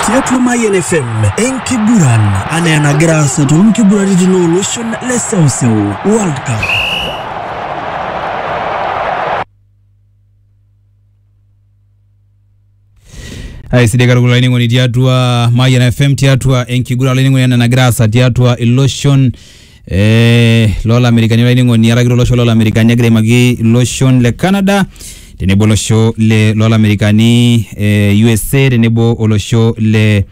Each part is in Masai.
tiatua Mayian FM enkiguran anaa enagira aasa too nkiguraritin ooloshon le seuseu World Cup. aisidai katukul olainining'oni tiatua Mayian FM tiatua enkiguran olainining'oni ena nagira aasa tiatua iloshon eh, lolamerikani olainining'oni araki tolosho lolamerikani egira aimaki iloshon le canada tenebo olosho le lolamerikani eh, usa tenebo olosho le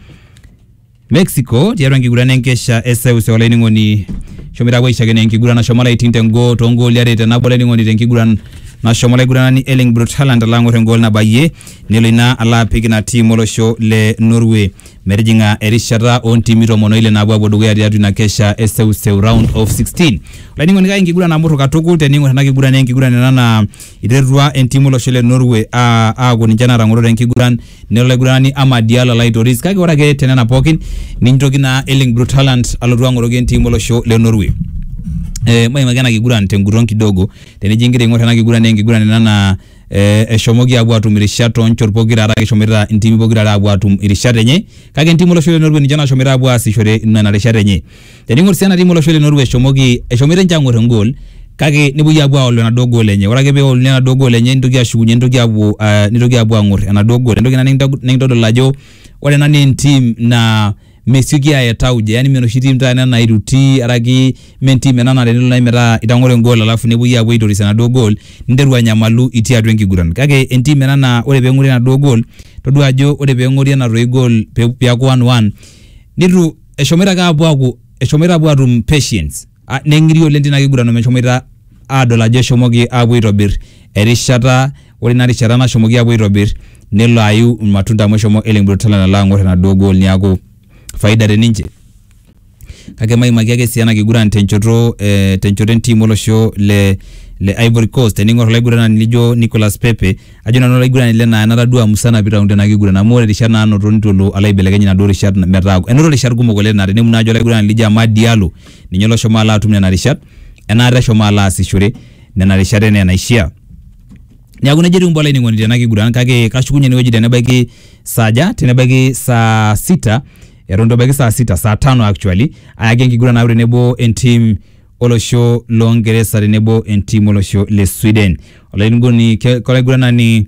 mexico tiatua enkiguran enkesha eseuse olainining'oni shomoita apuo aishakeno enkiguran nashomo laiting tengo tongooli are tenabo olainining'oni tenkiguran nashomo olaiguranani Erling Brot Haaland alo ang'or engool nabayie nelo ina alo apik ina tiim olosho le Norway Metijing'a erishata oo ntimi tomon oile naapuo apuo dukuya tiatua ina kesha e seuseu round of 16. Olainining'oni kake enkiguran namurru katukul tening'or ena kiguran naa enkiguran ena naa iterua entim olosho le Norway aa aaku ninche naatang'oro te nkiguran nelo olaiguranani Amad Diallo alo aitoris kake ore ake tenena pookin nitoki naa Erling Brut Haaland alotu ang'oroki entim olosho le Norway. Eh, maimaki ena kiguran tenguton kidogo tenijo ingira aing'or ena kiguran naa enkiguran ena naa eh, eshomoki apuo atum irishat toonchot pokira are eshomoita intimi pokira are apuo atum irishat enye kake entim olosho le Norway ninche nashomoita apuo aasishore nena rishat enye tening'or sii ena tim olosho le Norway eshomoki eshomoita ninche ang'or engol kake nepuoi apuo aolu enaduo gol enye ore ake peoluni enaduo gol enye nitoki ashukunye nitoki apuo ah, nitoki apuo ang'or enaduo gol entoki ina nikinta- nikintodol ajo ore ena naa entim naa mesioki aaya tauja yani me enoshi tim taata ena nairuti araki me entim ena naa tenelo naaji metaa itang'oro engol alafu nepuoi apuo aitoris enaduo gol ninteru anyamalu itii atua enkiguran kake entim ena naa ore peng'ori enaduo gol todua ajo ore peng'ori ena toi gol pe- piaku one one nitu eshomoita ake apuo aaku eshomoita apuo atum patience ah, neng'iri oleng tina kiguran omeshomoita aadol ajo eshomoki aapuo aitobir erishata ore ina rishata nashomoki aapuo aitobir nelo ayu irmatunda amu eshomo Erling Brot Haaland alo ang'or enaduo goal niaku faida te ninche kake maimaki ake sii ena kiguran tenchoto eh, tenchoto entim olosho le le Ivory Coast tening'or olaiguranani lijo Nicolas Pepe ajo nanu olaiguranani le naa natadua musana pitaung tena kiguran amu ore rishat naanoto nitu elo alo aibelekeny inaduo rishat metaa enoto rishat kumok oleng naa tenimu naaji olaiguranani lijo Amad Diallo ninye oloshomo alo atum nena rishat enaata eshomo alo aasishore nena rishat enaa enaishia neaku nejo etiu mbaa olainining'oni tena kiguran kake kashukunye enewueji tenebaiki saaja tenebaiki saa sita eton itu ebaiki saa sita saa tano actually ayaki enkiguran naaku tenebo entim olosho loo Ngeresa tenebo entim olosho le Sweden olainining'oni ke- kolaiguranani